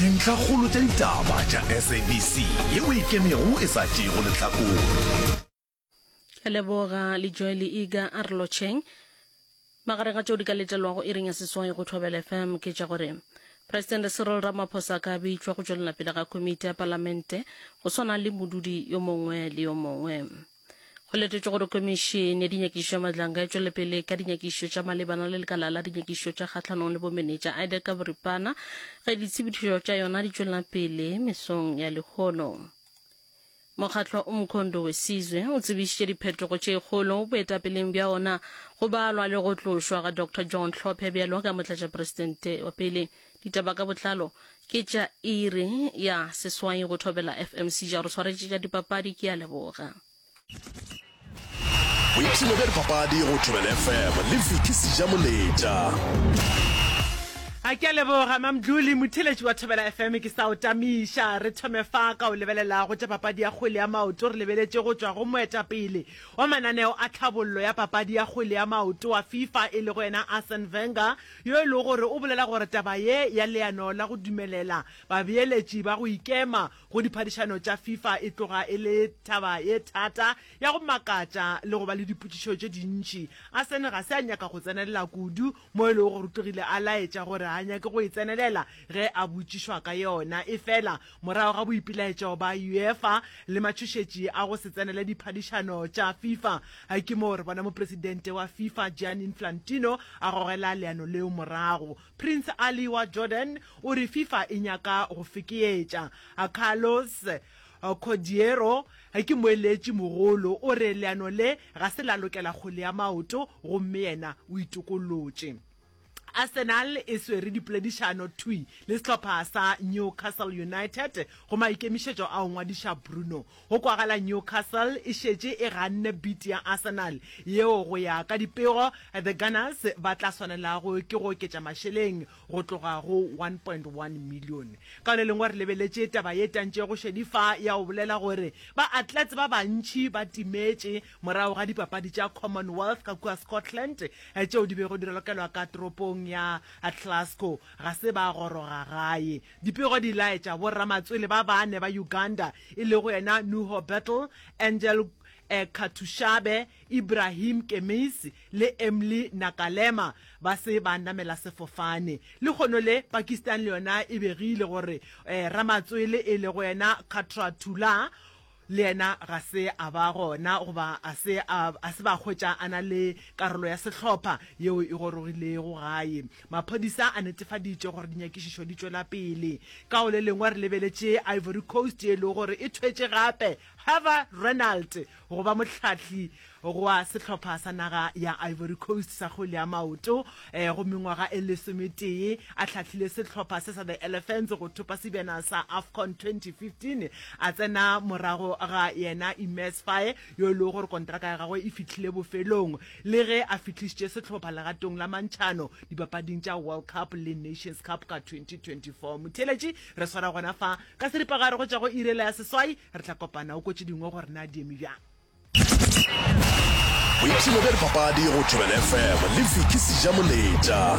Dintlhakgolo tša ditaba tša SABC ye o e kemego e sa tšeego lehlakore. Leboga le Joel Iga a re lotšheng. Magareng a tšeo di ka letelwago iring ya seswai go Thobela FM ke tša gore Presidente Cyril Ramaphosa a ka bitšwa go tšwelela pele ga komiti ya Palamente go swana le modudi yo mongwe le yo mongwe. go letetšwe gore komišene ya dinyakišo ya madlanga e tšwele pele ka dinyakišo tša malebana le lekala la dinyakišo tša kgatlhanong le bomenetša ida ka boripana ge ditshepedišo tša yona di tšwelela pele mesong ya lehono mokgatlho o mokhondo wesizwe o tsebišitše diphetogo tše kgolo boetapeleng bja ona go balwa le go tlošwa ga dr john tlhophe bjalo ka motlatšaperesidente wa pele Ditaba ka botlalo ke tša iri ya seswai go thobela FMC ja re tshwaretše tša dipapadi ke a leboga. Boipshino bja dipapadi go thobela FM le Vicky Sija Moletša. A ke a leboga mamdluli motheletši wa thobela fm ke sa o tamiša re thome fa ka o lebelela go tša papadi ya kgwele ya maoto re lebeletše go tšwa go moetapele wa mananeo a tlhabollo ya papadi ya kgwele ya maoto wa fifa e le go yena arsen venger yo e lego gore o bolela gore taba ye ya leano la go dumelela babeeletši ba go ikema go diphadišano tša Fifa e tloga e le taba ye thata, ya go makatša le go ba le dipotšišo tše dintši. Arsene ga se a nyaka go tsenelela kudu, mo e lego gore o tlogile a laetša gore ga a nyake go e tsenelela ge a botšišwa ka yona. Efela Morago ga boipelaetšo ba UEFA le matšhošetši a go se tsenele diphadišano tša Fifa, ke moo re bona mopresidente wa Fifa Gianni Inflantino a gogela leano leo morago. Prince Ali wa Jordan o re Fifa e nyaka go fekeetša. Carlos Cordeiro ke moeletši mogolo, o re leano le ga se la lokela kgwele ya maoto gomme yena o itokollotše. Arsenal e swere dipoledišano thwi le sehlopha sa Newcastle United go maikemišetšo a go ngwadiša Bruno. Go kwagala Newcastle e šetše e ganne bid ya Arsenal yeo go ya ka dipego, The Gunners ba tla swanelago ke go oketša mašeleng go tloga go one point one million. Ka le lengwe re lebeletše taba ye tantšego šedifa ya go bolela gore ba-atlets ba bantši ba timetše morago ga Dipapadi tša Commonwealth ka kua Scotland tšeo di bego di ralokelwa ka toropong ya Glasgow, ga se ba goroga gae. Dipego di laetša boramatswele ba bane ba Uganda e lego yena Nuho Bettle, Angel Katushabe, Ibrahim Kemisi le Emly Nakalema ba se ba namela sefofane. Lehono le, Pakistan le yona e begile gore ramatswele e lego yena Khatratullah Le yena ga se a ba gona goba a se a, a se ba hwetša a na le karolo ya sehlopha yeo e gorogilego gae. Maphodisa a netefaditše gore dinyakišišo di tšwela pele. Ka go le lengwe re lebeletše Ivory Coast ye e lego gore e thwetše gape Herve Renald go ba mohlahli Gwa sehlopha sa naga ya Ivory Coast sa kgwele ya maoto go mengwaga e lesometee a hlahlile sehlopha se sa The Elephants go thopa sebjana sa Afcon 2015, a tsena morago ga yena Imez Faye yo e lego gore kontraka ya gagwe e fihlile bofelong le ge a fihlišitše sehlopha legatong la mantšhano dipapading tša World Cup le Nations Cup ka 2024. Motheeletši, re swara gona fa ka seripagare go tšwa go iri ela ya seswai. Re tla kopana o ko tše dingwe gore na di eme bjang. boipshino bja dipapadi go thobela fm le vicky sejamoletša